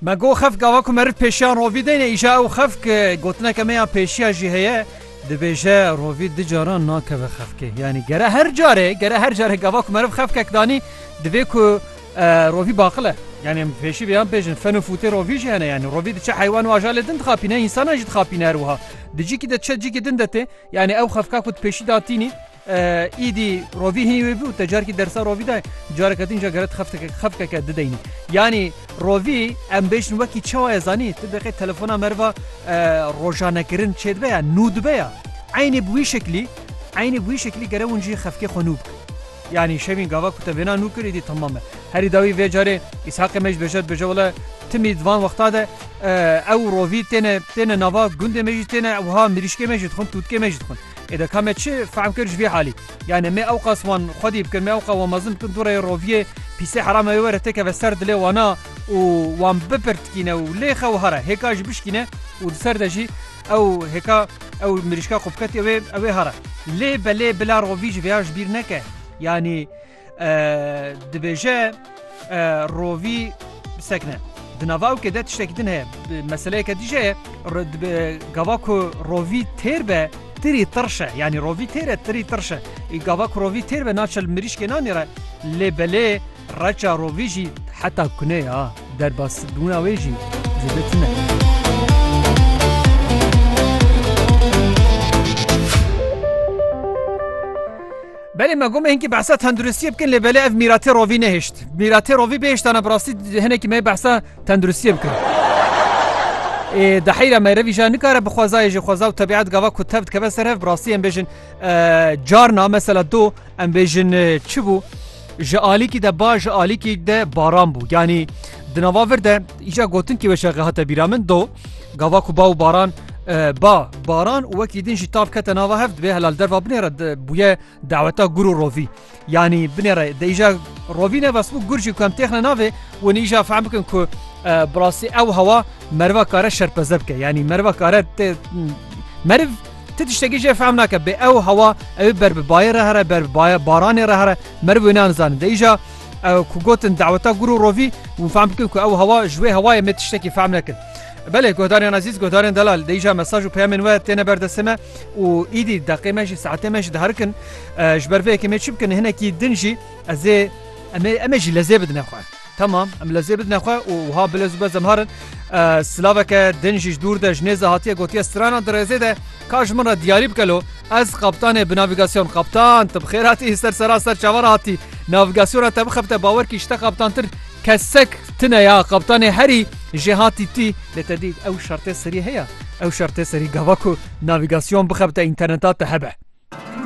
Me got xef gava ku meriv pêşiyan rovî deyne îja ew xef ki gotineke me ya pêşiya jî heye dibêje rovî di caran nakeve xefkê yanî gere her carê gere her carê gava ku meriv xefkek danî divê ku rovî baqile yanî em pêşî vê yan pêjin fen û fûtê rovî jî hene yanî rovî diçe heywan û ajalê din dixapîne însanan jî dixapîne her wiha di cîkî de diçe cîkî din de tê yanî ew xefka ku di pêşî de hatînî Îdî rovî hinî wê bû te carkî dersa rovî de careke din ca geret xefteke xefkeke dideynî. Yanî rovî em bêjin wekî çawa ye zanî tu deqê telefona merva rojanekirin çêdibe ya nû dibe ya. Eynî bi wî şeklî eynî bi wî şeklî gere hûn jî xefkê xwe nû bikin. Yanî şevîn gava ku te vêna nû kir îdî temam e. Herî dawî vê carê Îshaqê me jî dibêje dibêje wele timî di van wexta de ew rovî têne têne nava gundê me jî têne wiha mirîşkê me jî dixwin tûtkê me jî dixwin. Ê de ka me çi fehm kir ji vê halî? Yanê me ewqas wan xwedî bikin, me ewqas wan mezin bikin dû rê roviyê pîsê herama wê were têkeve ser dilê wana û wan bipirtkîne û lê xew hara hêka jî bişkîne û di ser de jî ew hêka ew mirîşka ku biketiye wê ew ê hara. Lê belê bila rovî ji vêya ji bîr neke. Yanî Dibêje rovî sekne. Di navawkê de tiştekî din heye. Meseleyeke dî jî heye. Gava ku rovî têr be tirî tirş e. Yanî rovî têr e tirî tirş e. Gava ku rovî têr be naçe li mirîşkê nanîre. Lê belê reça rovî jî heta kunê ya. Derbasbûna wê jî zêde tune. Belê me gomê hinkî behsa tenduristiyê bikin lê belê ev mîratê rovî nehişt. Mîratê rovî bêhiştana bi rastî hinekî me behsa tenduristiyê bikin. Ê di heyra me revî jî nikare bi xwezayê jî xweza û tebîet gava ku tev dikeve ser hev bi rastî em bêjin carna mesela do em bêjin çi bû ji alîkî de ba ji alîkî de baran bû yanî di nava vir de îca gotin kî weşexe hate bîra min do Gava ku ba û baran ba baran û wekî din jî tav kete nava hev divê helal derva binêre bûye daweta gur û rovî. Yanî binêre de îja rovî ne bes bû gur jî ku em têxne navê û nî îja fehm bikin ku bi rastî ew hewa meriva kare şerpeze bike yanî meriva kare tê meriv ti tiştekî jê fehm nake bê ew hewa ew ber bi bayê re here ber bi baranê re here meriv wê nan zanin de îja Ku gotin daweta gûr û rovî hûn fehm bikin ku ew hewa ji wê hewayê me tiştekî fehm nekin. Belê guhdarên ezîz, guhdarên delal dê îcar mesaj û peyamên we têne ber destê me û îdî deqê me jî saetê me jî diherikin. Ji ber vê yekê em ê çi bikin hinekî din jî ez ê Em ê em ê jî lezê bidine xwe. Tamam em lezê bidine xwe û wiha bilez û bez em harin. Silaveke din jî ji dûr de ji nêze hatiye gotiye stranan di rêzê de Ka ji min re diyarî bike lo ez kaptanê bi navîgasyon Kaptan tu bi xêr hatî ser sera ser çavan hatî navîgasyona te bixebite bawer kî ji te kaptantir kesek tune ya kaptanê herî jê hatî tî lê te dî ew şertê serî heye ew şertê serî gava ku navîgasyon bixebite înterneta te hebe.